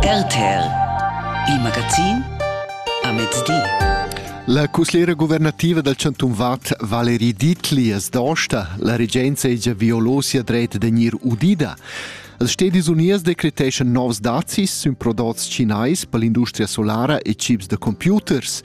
RTL, il magazin a mezdi. La cuslera guvernativa dal chantun Vad Valerie Dietli es dosta. La regenza egia violosia dret de gnir udida. Els Stedis Unies decreteschan novs dazis sün prodots cinais per l'industria solara e chips de computers.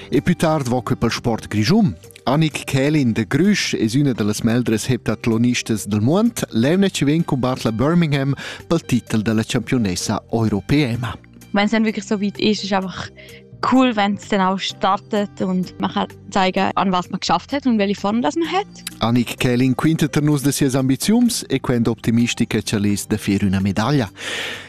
E più tard voca pel sport grischun. Annick Kälin de Grüsch es üna da las meldras heptatlonistas del muond, l'emna vegn cumbat la Birmingham pel titel da la championessa europeema. Wenn es dann wirklich so weit ist, ist einfach cool, wenn es dann auch startet und man kann zeigen, an was man geschafft hat und welche Form das man hat. Annick Kälin quintet er nus de sias ambiziums e quend optimistica chalis de fir üna medaglia.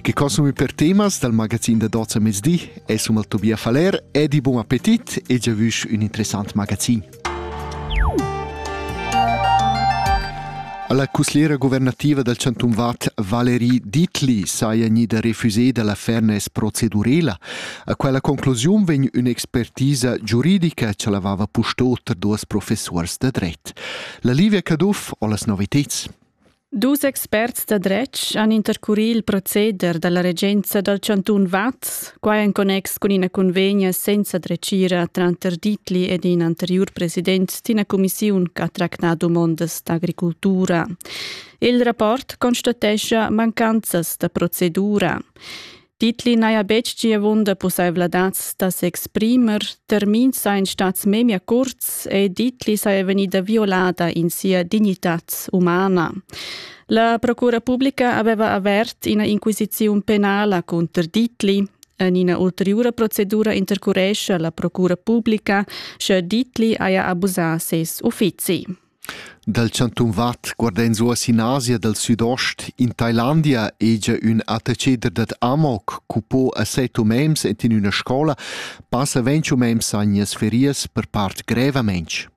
Che consumi per temas dal magazin da Doza mezdi è summa Tobias Faller e di buon appetit e già vusch un interessant magazin. Alla cussliera governativa dal Chantum Vad Valérie Ditli saja gnida refuséda la fairness procedurela. A quella conclusiun vegn un'expertisa giuridica che lavava pusto tar duas professors da dret. La Livia Caduff ho las noviteds. Dus experts da dretg han intercurì il proceder da la regenza dal chantun Vaz, quai en connex cun ina cunvegna senza dretgira tranter Dietli ed in anteriur president d'ina cumissiun ch'ha tractà dumondas d'agricultura. Il rapport constatescha mancanzas da procedura. Titli n'haja betg giavunda pussaivladads da s'exprimer, termins sajan stads memia curts e Ditli saja vegnida violada in sia dignitad umana. La procura publica aveva avert ina inquisiziun penala cunter Ditli. En ina ulteriura procedura intercurescia la procura publica, sche Ditli haja abusà ses uffizi. Dal chantun Vad guarda ins uoss in Asia dal südost. In Thailandia hegia ün attacheder dad Amok cu po a set umens ed in üna scola passa ventg umens sagnas ferias per part grevamente.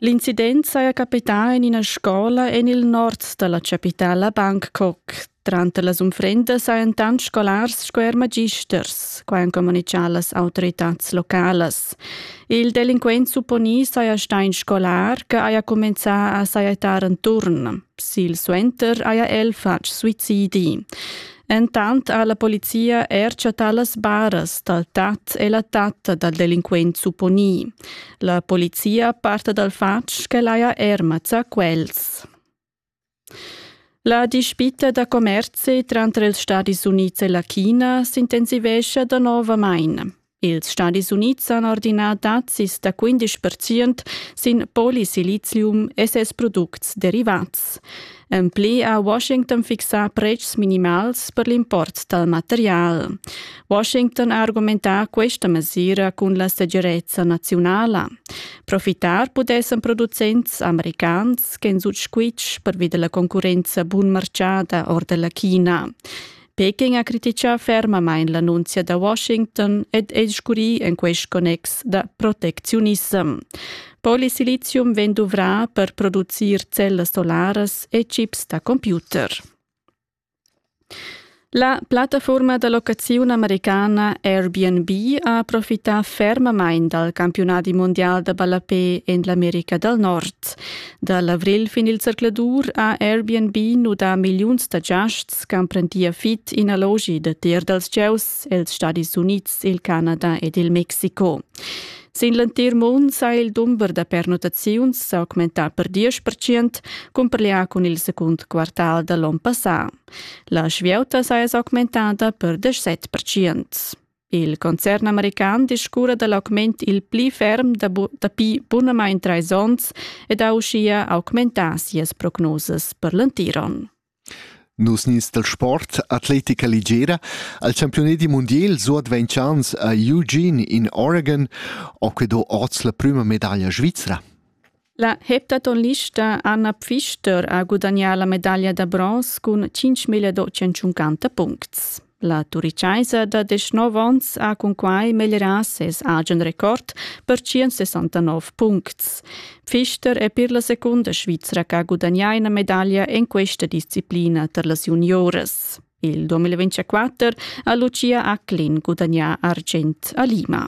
L'incident saja capità in ina scola en il nord da la chapitala Bangkok, Tranter las unfrendas hajan tant scolars sco er magisters, quai han communitgà las autoritads localas. Il delinquent supponì saja stà in scolar che haja cumenzà a sajettar enturn. Silsuenter haja el fatg suicidi. Entant ha la polizia er chattà las baras dal tat e la tatta dal delinquent supponì. La polizia parta dal fatg ch'el haja er mazzà quels. La dispita da commerzi tranter ils Stadis Unids e la China s'intensivescha danovamain. Ils Stadis Unids han ordinà dazis da 15 percent sin polisilizium e ses products derivats. En pli ha Washington fixà pretschs minimals per l'import dal material. Washington ha argumentà questa mesira cun la segirezza naziunala. Profitar pudessan producents americans ch'en sut squitsch pervi della concurrenza bunmarchada or della China. Peking ha critichà fermamain l'annunzia da Washington ed è scurì en quest connex da protecziunissem. Polisilizium vegn duvrà per producir cellas solaras e chips da computer. La plattafurma da locaziun americana Airbnb ha profità fermamain dal campiunadi mundial da ballapè en l'America dal Nord. Da l'avrigl fin il zercladur ha Airbnb nudà milliuns da giasts ch'emprendia fit in allogi da ter dals gieus els Stadis Unids, il Canada ed il Mexico. Sin l'entir mund sa il dumber da pernottaziuns s'augmentà per 10% cumparlià cun il secund quartal da l'onn passà. La svieuta saja s'augmentada per 17%. Il concern american discurra da l'augment il pli ferm dapi bunamain trais onns ed ha uschia augmentà sias prognosas per l'entir onn. Nus nins dal sport Atletica Ligera al campiunadi mundial suadventschans a Eugene in Oregon ho que do oz la prüma medaglia svizra. La heptatonlista Anna Pfister ha gudagnà la medaglia da bronz cun 5.250 puncts. La turichaisa da 19 onns ha cunquai meglierà ses agen record per 169 puncts. Pfister è per la secunda Svizra che ha gudagnà una medaglia in questa disciplina per las junioras. Il 2024 ha Lucia Acklin gudagnà argent a Lima.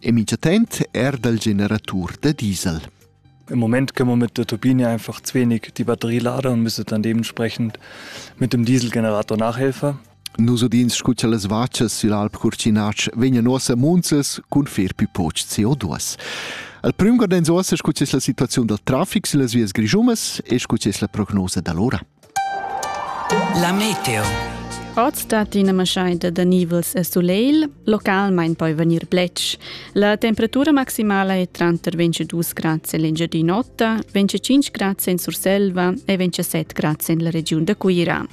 e mitschatent er dal generatur da diesel. Im Moment können wir mit der Turbine einfach zu wenig die Batterie laden und müssen dann dementsprechend mit dem Dieselgenerator nachhelfen. Nus udins scu cha las vachas sill'alp Curcinatsch vegnan ossa munzas cun fer pipoch CO2. Al prüm gardens ossa scu es la situaziun dal trafic sillas vias grischumas e scu es la prognosa da l'ora. La meteo. Oz dat ina maschaida da nivels e sulegl, localmain poi vegnir bletsch. La temperatura maximala è tranter 22 grads en l'Engiadin'Ota, 25 grads en Surselva e 27 grads en la regiun da Cuira.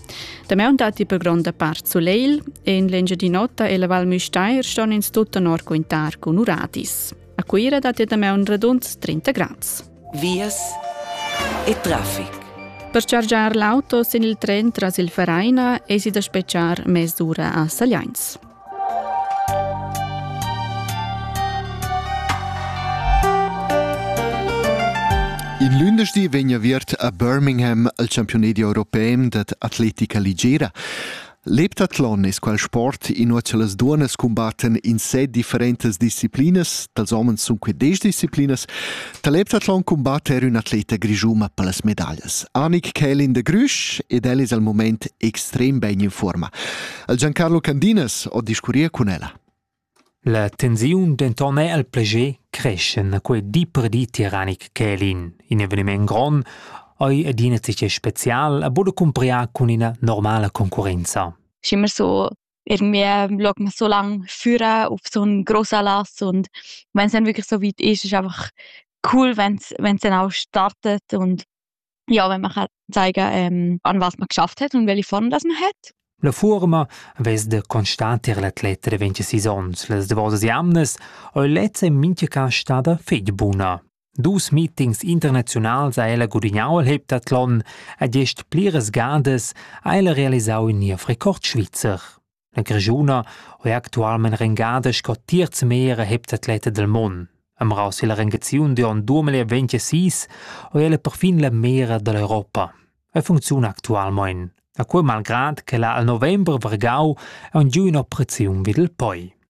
Damaun datti per gronda part sulegl. En l'Engiadin'Ota e la Val Müstair ston ins tut tenor quintar cun uradis. A Cuira datti damaun radund 30 grads. vias e traffic. Per chargiar l'auto sin il tren tras il Vereina esi da spetgar mes'ura a Sagliains. In lündeschdi vegna viert a Birmingham al campiunedi europei dad atletica ligera. L'heptathlon es quel sport inua cha las duonnas cumbattan in set differentas disciplinas, dals homens sun que desch disciplinas. Da l'heptathlon cumbatta er ün'atleta grischuma per las medaglias. Annick Kälin de Grüsch ed el es al mumaint extrem bain in fuorma. El Giancarlo Candinas ho discurrir cun ella. La tensiun denton era el plascher creschan a quei di per di tiaranic Kälin. In eveniment grond ei adina tgei special a buca cumpriar cun ina normala concurrenza. Schi mir so irgendwie schaut man so lang führen auf so einen grossen Anlass und wenn es dann wirklich so weit ist, ist einfach cool, wenn es dann auch startet und Ja, wenn man kann zeigen ähm, an was man geschafft hat und welche Form das man hat. La fuorma vess da constater l'atlet reventia sis ons, las davosas jamnas, o lezza in mincha cas stada fetg buna. Dus meetings internationals ha ella gudignau al heptathlon ed gest pliras gadas ha ella realisau in niev Rekord svizzer. La grischuna ho eir actualmaing rengada sco terz meglier heptatleta dal mond. Amrau silla rengaziun d'on 2026 ho ella perfin la meglra da l'Europa. E funcziuna actualmaing. A quei malgrad che la al november vargau ha giù ün'operaziun vid il poi.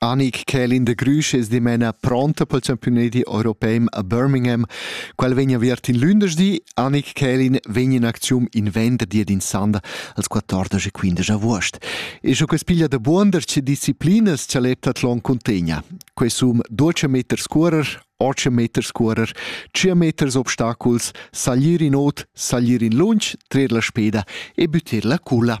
Anig Kälin de Grüsch es dimena pronta pel champiunedi europeim a Birmingham. Quel vegn aviert in lündeschdi. Anig Kälin vegn in aczium in venderdi ed in sanda als 14 e 15 avuost. E scho que's piglia da buonder che disciplinas cha l'eptathlon cuntegna. Que sum 12 meter scurer, 8 meter scurer, 5 meters obstaculs, saglir in ot, saglir in lunch, trer la speda e büttir la culla.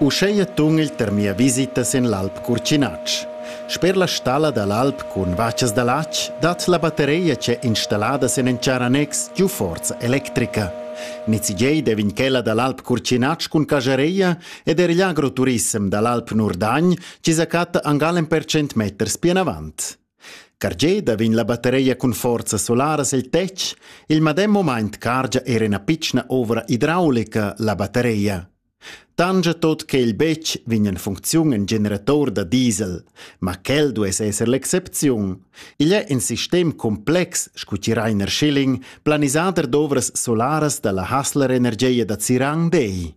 Uscheia tung'igl tar mia visita sen l'Alp Curcinatsch. Sper la stalla da l'alp cun vachas da latg dat la battereia c'è installada sen en char annex giu forza electrica. Nizigei devin quella da l'Alp Curcinatsch cun cajareia ed er l'agroturissem da l'Alp Nurdagn ci sa catta angal en percent meters pianavant. Cargeda vegn la batteria cun forza solaras el tetg, il medem mumaint cargia era ina pitschna ovra idraulica la batteria. Tangia tot che il betg vegn en funcziun in generator da diesel, ma quel duess esser l'excepziun. Igl è in sistem complex, scu chi Rainer Schilling, planisader d'ovras solaras da la Hassler Energia da Zirang dei.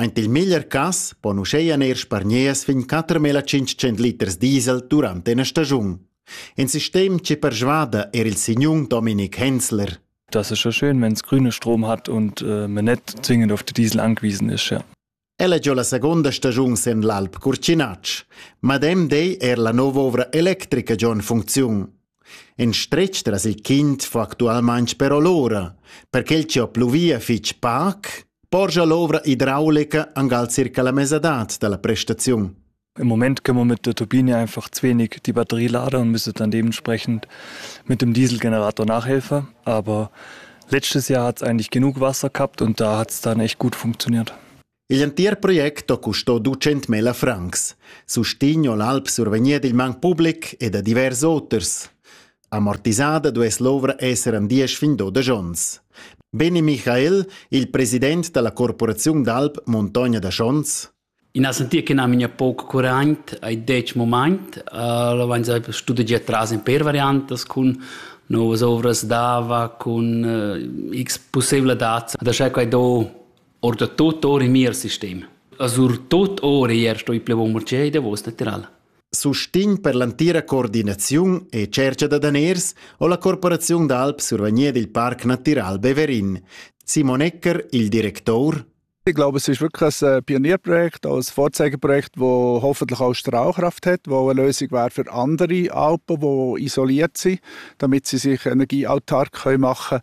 Aint il meglier cas pon uscheia neir spargneas fin quatermila tschintschent liters diesel durant ena stagiun. In sistem che persvada er il signun Dominik Hensler. Dass es schon schön, wenn es grüne Strom hat und äh, man nicht zwingend auf den Diesel angewiesen ist. Ja. El è già la seconda stagiun sen l'Alp Curcinacz. Madem dei er la nova ovra electrica già in funziun. In stretg tras il quint fa actualmain però l'ura. Per quel chi ho pluvia fich pac, porscha l'ovra idraulica angal circa la mesadad da la prestaziun. Im Moment können wir mit der Turbine einfach zu wenig die Batterie laden und müssen dann dementsprechend mit dem Dieselgenerator nachhelfen. Aber letztes Jahr hat es eigentlich genug Wasser gehabt und da hat es dann echt gut funktioniert. Igl entir project ho custo ducentmila francs, sustegn ho l'alp survegnir dil man public e da divers oters. Amortisada duess l'ovra esser an diesch fin dodesch ons. Beni Michael, il president dalla corporaziun d'alp Montogna da Schons. In ha sentir che nam ina poc curant ai dec moment, la van sai studegiar tras in per variantas cun novas ovras d'ava, cun x possibile dads da schai quai do Ordatut or in mier sistem. E surtut or ier sto i plevon marcei davos lateral. Sustegn per l'antira coordinaziun e cerca da daners ho la Corporaziun d'Alp survagnia dil Parc Natural Beverin. Simon Ecker, il director, Ich glaube, es ist wirklich ein Pionierprojekt, ein Vorzeigeprojekt, das hoffentlich auch Strahlkraft hat, das eine Lösung wäre für andere Alpen, die isoliert sind, damit sie sich energieautark machen können.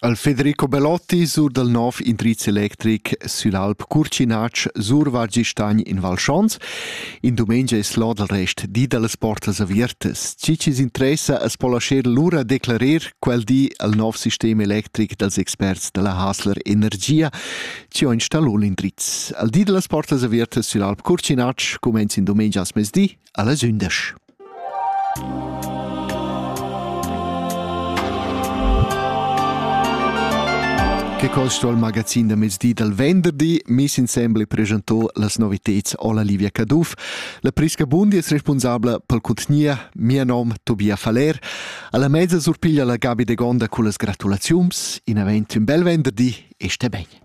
Al Federico Belotti sur dal nov indriz electric süll Alp Curcinatsch survargistagn in Val Schons. In dumengia es l'o dal rest di da las portas aviertas. Chi chi's interessa as po lascher lura declarer quel di al nov sistem electric dals experts da la Hasler Energia, chi ho installà l'indriz. Al di da las portas aviertas süll Alp Curcinatsch cumenz in dumengias mezdi allas undisch. Che costo il magazin da mezdi dal venderdi miss insembel presentò las noviteds alla Livia Caduff. La Prisca Bundi è responsabla pel contgnia, mia nom Tobia Faller. Alla mezza surpiglia la Gabi de Gonda con las gratulaziums. In event un bel venderdi e stai bene.